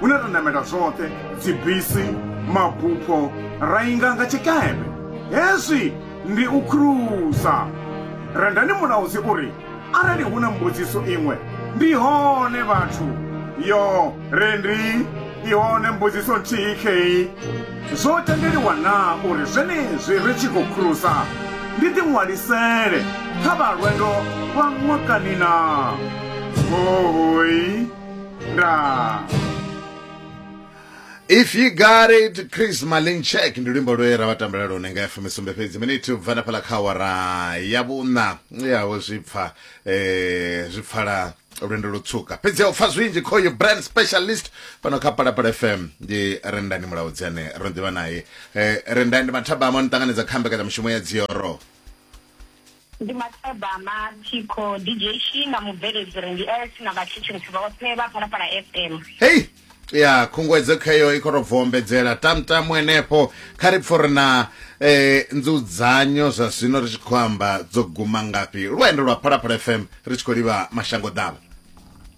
hune ra namela zwoṱhe dzibisi mabupho ra inga nga tshikepe hezwi ndi u khruza rendani mulaudzi uri arali hu na mbudziso iṅwe ndi hone vhathu yo rendi i hone mbudziso nthihi kheyi zwo tendeliwa na uri zwenezwi ri tshi khou khruza ndi ḓiṅwalisele kha vha lwendo lwa ṅwakani na hohoi nda if you got it chris malinchek ndi luimbo lwe ra vha tambela lone nga fm sumbe fhedzi miniti ubva na fhala kha awara ya vhuṋa yaho zwi pfa eh, zwi pfala lwendo lutswuka fhedzi u pfa zwinzhi khoyu brand specialist fhano kha palapala fm ndi rendani mulaudzi ane ro ḓivha naye eh, rendani ndi mathabama ni ṱanganedza kha mbekanyamushumo ya dzioro Ndi Matabama, Thikho, DJ Shi na mubveledzi re ndi S na vhathetshelesi vhoṱhe vha Phalaphala FM. hei ya khunguwedzo kheyo i khou tou bvombedzela tamtamu henefho kha ri pfo ri na eh, nzudzanyo zwa zwino ri tshi khou amba dzo guma ngafhi lwendo lwa phalaphala fm ri tshi khou livha mashango ḓavha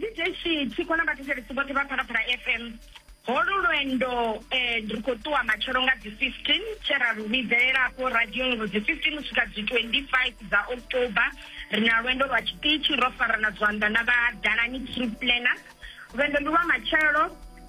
dj tshiko na vhathetshelesi vhoṱhe vha phalaphala fm holu lwendo um eh, ri khou ṱuwa matshelo nga dzi 15 tshe ra lu vhidzelelafho radioni uri dzi 15 u swika dzi 25 dza october ri na lwendo lwa tshiṱitshi ro farana zwanḓa na vha dalani trip planner lwendo ndi lwa matshelo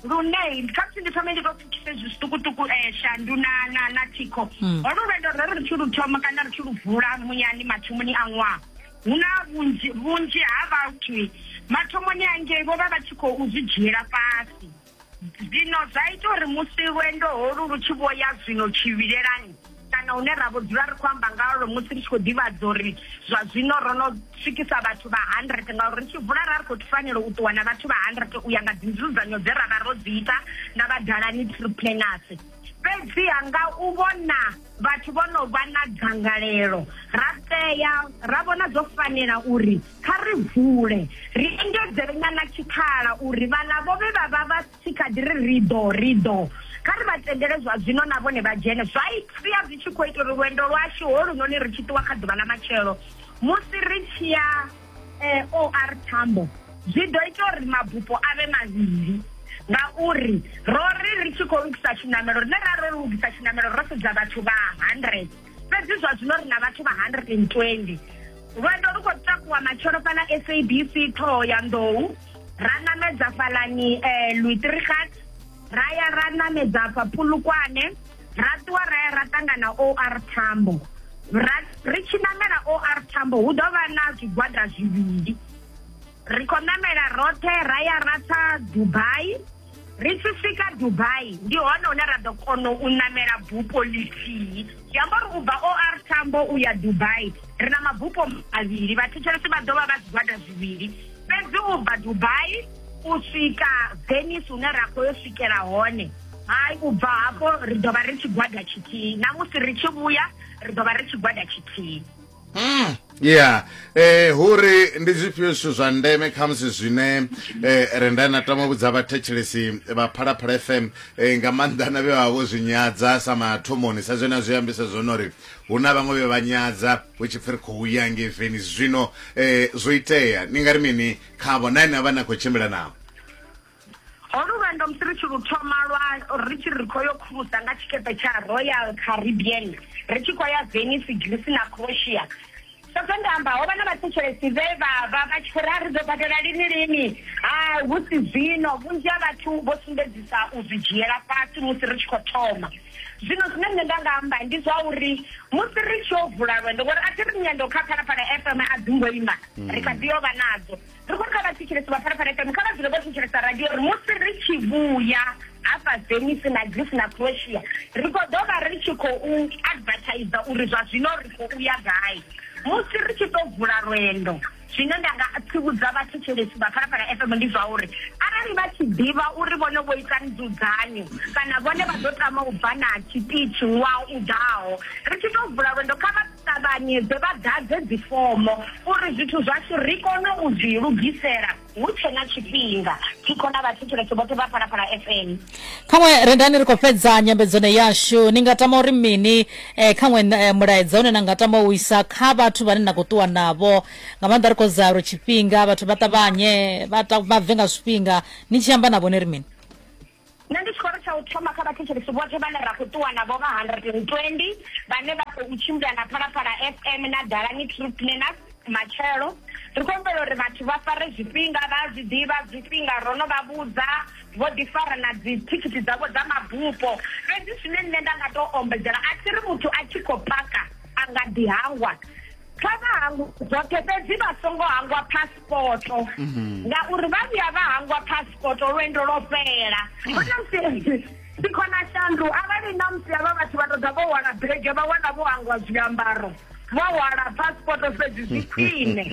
lune kha musi ndi thome ndi to pfukise zwi zwiṱukuṱuku um eh, shandu na na na thikho hmm. holu lwendo ro ri ri tshi lu thoma kana ri tshi lu vula muyani mathomoni a ṅwaha hu na vhunzhi vhunzhi ha vhathu mathomoni angei vho vha vha tshi khou zwi dzhiela fhasi zwino zwa ita uri musi lwendo holu lu tshi vho ya zwino tshivhilelani kana hune ra vho dzula ri khou amba ngalwo musi ri tshi khou ḓivhadza uri zwa zwino ro no swikisa vhathu vha hundred ngauri ri tshi vula ra ri khou fanela u ṱuwa na vhathu vha hundred u ya nga dzinzudzanyo dze ra vha ro dzi ita na vhadalani true planers Fhedziha nga u vhona vhathu vho no vha na dzangalelo, ra tea ra vhona zwo fanela uri kha ri vule, ri engedzele nyana tshikhala uri vhaḽa vho vhe vha vha vha tshi kha ḓi ri ri ḓo, ri ḓo, kha ri vha tendele zwa zwino na vhone vha dzhene, zwa sia zwi tshi khou ita uri lwendo lwashu holunoni ri tshi ṱuwa kha ḓuvha ḽa matshelo musi ri tshi ya eh, o r tambo zwi ḓo ita uri mabupo a vhe mavhili ngauri ro ri ri tshi khou lugisa tshiṋamelo rine ra ro lugisa tshiṋamelo ro sedza vhathu vha hundred fhedzi zwa zwino ri na vhathu vha hundred and twenty lwendo lu khou takuwa matshelo fhala sabc ṱhoho ya nḓou ra ṋamedza fhalani um eh, luitrigat ra ya ra ṋamedza fha pulukwane ra ṱuwa ra ya ra ṱangana OR Tambo ri tshi namela OR Tambo hu ḓo vha na zwigwada zwivhili ri khou namela roṱhe ra ya ra tsa Dubai ri tshi swika Dubai ndi hone hune ra ḓo kona u namela bupo lithihi zwi amba uri u bva OR Tambo u ya Dubai ri na mabupo mavhili vhathetshelesi vha ḓo vha vha zwigwada zwivhili fhedzi u bva Dubai u swika Venice hune ra khou yo swikela hone hai u bva hafho ri ḓo vha ri tshigwada tshithihi na musi ri tshi vhuya ri ḓo vha ri tshigwada tshithihi Mm. ya eh huri ndi zwifhio zwithu zwa ndeme khamusi zwine eh, re nda na tama vhudza vhathetshelesi vha phalaphala fm eh, nga maanḓa na vhe vha vho zwi nyadza sa mathomoni sa zwe na zwi ambisa zwone uri hu na vhaṅwe vhe vha nyadza hu tshi pfi ri khou ya ngeveni zwino eh, zwo itea ni nga ri mini khavho na ine a vha na khou tshimbila navho Ho luvhendo musi ri tshi lu thoma lwa ri tshi ri khoyo khulusa nga tshikepe tsha Royal Caribbean ri tshi khoya Venice, Greece na Croatia. Sa zwe nda amba, ho vha na vhathetshelesi vhe vha vha vha tshi khou ri, A ri ḓo badela lini lini? Ha, hu si zwino. Vhunzhi ha vhathu vho sumbedzisa u zwi dzhiela fhasi musi ri tshi khou thoma. Zwino zwine nṋe nda nga amba ndi zwa uri musi ri tshi yo vula lwendo, ngori a thi ri nyendo kha Phalaphala FM a dzi ngo ima, ri kha ḓi yo vha nadzo. ri khou ri kha vhathetshelesi vha pharaphala fm kha vha dzule vho thetshelesa radio ri musi ri tshi vhuya hafha venice na greece na croatia ri khou ḓo vha ri tshi khou advertiser uri zwa zwino ri khou uya gai musi ri tshi tou vula lwendo zwine nda nga tsivhudza vhathetshelesi vha phalaphala fm ndi zwa uri arali vha tshi ḓivha uri vhone vho ita nzudzanyo kana vhone vha ḓo tama u bva na tshipithi wa u ḓaho ri tshi tou vula lwendo kha ṱavhanyedze vha ḓadze dzifomo uri zwithu zwashu ri kone u zwi lugisela hu tshe na tshifhinga thikho na vhathetshelesi vhoṱhe vha phalaphala fm khaṅwe rendani ri khou fhedza nyambedzano yashu ni nga tama uri mini eh, khaṅwe eh, mulaedza une na nga tama u isa kha vhathu vhane na khou ṱuwa navho nga maanḓa ri khou zaa uri tshifhinga vhathu vha ṱavhanye vha ta- vha bve nga zwifhinga ni tshi amba navho ni ri mini Nṋe ndi tshikoro tsha u thoma kha vhathetshelesi vhoṱhe vhane ra khou ṱuwa navho vha 120 vhane vha khou tshimbila na Phalaphala FM na Dalani Truth Cleaners matshelo. Ri khou humbela uri vhathu vha fare zwifhinga, vha a zwi ḓivha zwifhinga, ro no vha vhudza, vho ḓi fara na dzithikhithi dzavho dza mabupo. Fhedzi zwine nṋe nda nga tou ombedzela, a thi ri muthu a tshi khou paka a nga ḓi hangwa. Kha vha hangwe zwoṱhe fhedzi vha songo hangwa phasi. paspoto mhm. ngauri vha vhuya vha hangwa paspoto lwendo lwo fhela mm. sikhona shandu arali na musi avha vhathu vha toḓa vho wana bege vha wana vho hangwa zwiambaro vho hwala passport fhedzi zwi khwine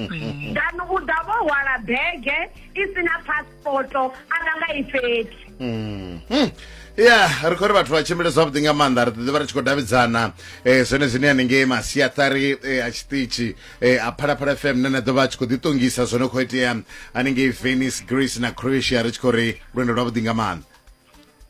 dani u ḓa vho hwala bege i si na passport poto ana nga i fhethu Mm. Mm. ya ri khou ri vhathu vha tshimbile zwavhuḓi nga maanḓa ri ḓiḓi vha ri tshi khou davhidzana um zwone zwine hanengei masiaṱari eh, a tshiṱitshi eh, a phalaphala fm ne na ḓo vha a tshi khou ḓiṱongisa zwo no khou itea hanengei venice greece na croatia ri tshi khou ri lwendo lwavhuḓi nga maanḓa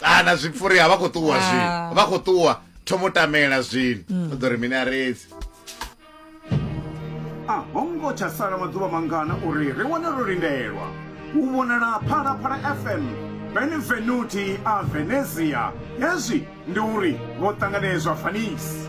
ana ah, zwipfuri a vha khou ṱuwa zwi ah. vha khou ṱuwa thomo tamela zwino mm. u ḓo ri mini a redzi a ho ngo tsha sala maḓuvha mangana uri ri wane ro lindelwa u vhonala phalaphala fm benevenuti a venezia hezwi ndi uri vho ṱanganedzwa fanisi